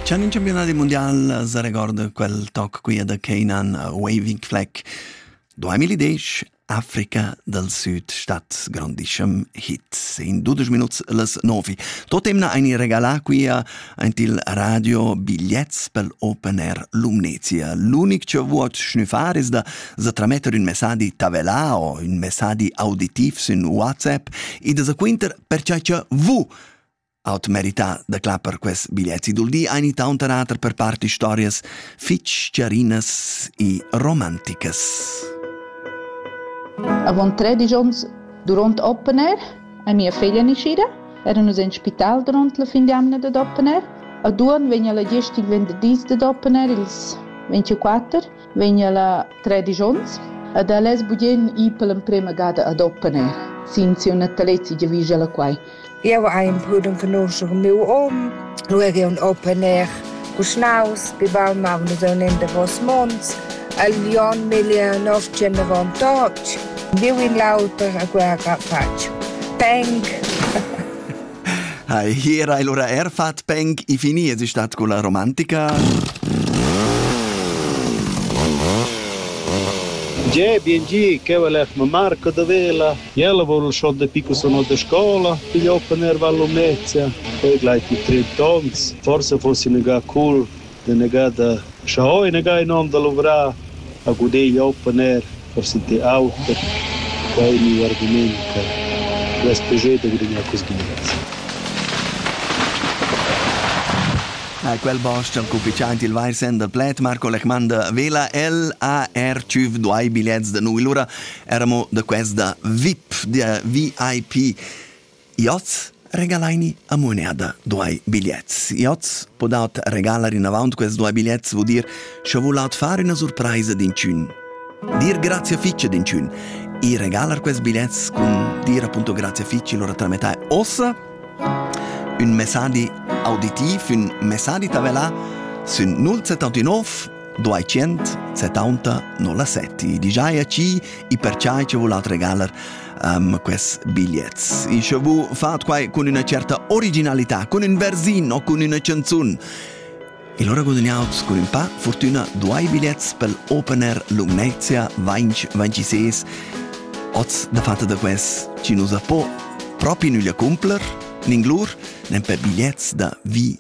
C'è un campionato mondiale se ricorda quel tocco qui da Canaan Waving Flag 2010 Africa del Sud statt grandischem Hit in 12 minuti les 9. Totem na eine regala qui ant il radio bigliets pel Open Air Lumnezia. L'unic che vuot schnuffar is da se trametter un messaggi tabella o un messaggi auditiv su WhatsApp e da se quinter per ciò che vu Aut merità da clapper quest biglietti dul di ein tauntera ater per part historias fitg chiarinas e romanticas. Avon tredici onns, duront open air, ei mia feglia nascida, era nus en spital duront la fin d'jamna dad open air. A Duon vegn la gest il venderdis dad open air, ils 24, vegn ella tredisch onns ed ella es bugen i per l'emprema gada ad opponer sin siu natalezi giavischa ella quai. Jeu hai imprudent conoscer miu om, lu er jeu opponer cuschnaus, bibal ma un zone in davos mons, el Jon miglia nost generon tots, viu in l'auter a guerra fatg. Thank. Ha, hier hai lura er fat peng i fini es stat con la romantica. Ge, bien gi, che val f Marco da Vela. Jella vol schon de pico sono de scola, piglio per val Lumezia. Poi gleit i 30 ons, forse fossi ne ga cool Denegar da schau enegar inond da luvrar, a guder jau per ner, per sentir auter. Quai è miu argument per respuger da gudignar quests giats. Quel bostg cufficiant il vair sender pled Marco Lechmander vela LAR tschüf duai bigliets da nui lura eramo da quest da VIP, der VIP Iots regalaini a muneda duai bigliets. Iots po dat regalar inavant quels duai bigliets vuol dir scha voul at far üna surpraisa d'inchün. Dir grazie fitch ad inchün e regalar quels bigliets cun dir appunto grazie fitch lura tramettai ossa un messadi auditiv, un messadi tavelà sün 079 200 70 07. Digiai a ci e per ciai ci voul at regalar um, quest bigliets. Ich vu fat quai con una certa originalità, con un versino, con una canzone. E allora guadagnaus con un pa fortuna due biglietti per l'opener Lumnezia 2026. Oz da fatta da quest ci nos po proprio nulla cumpler, ninglur, nen per bigliets da vi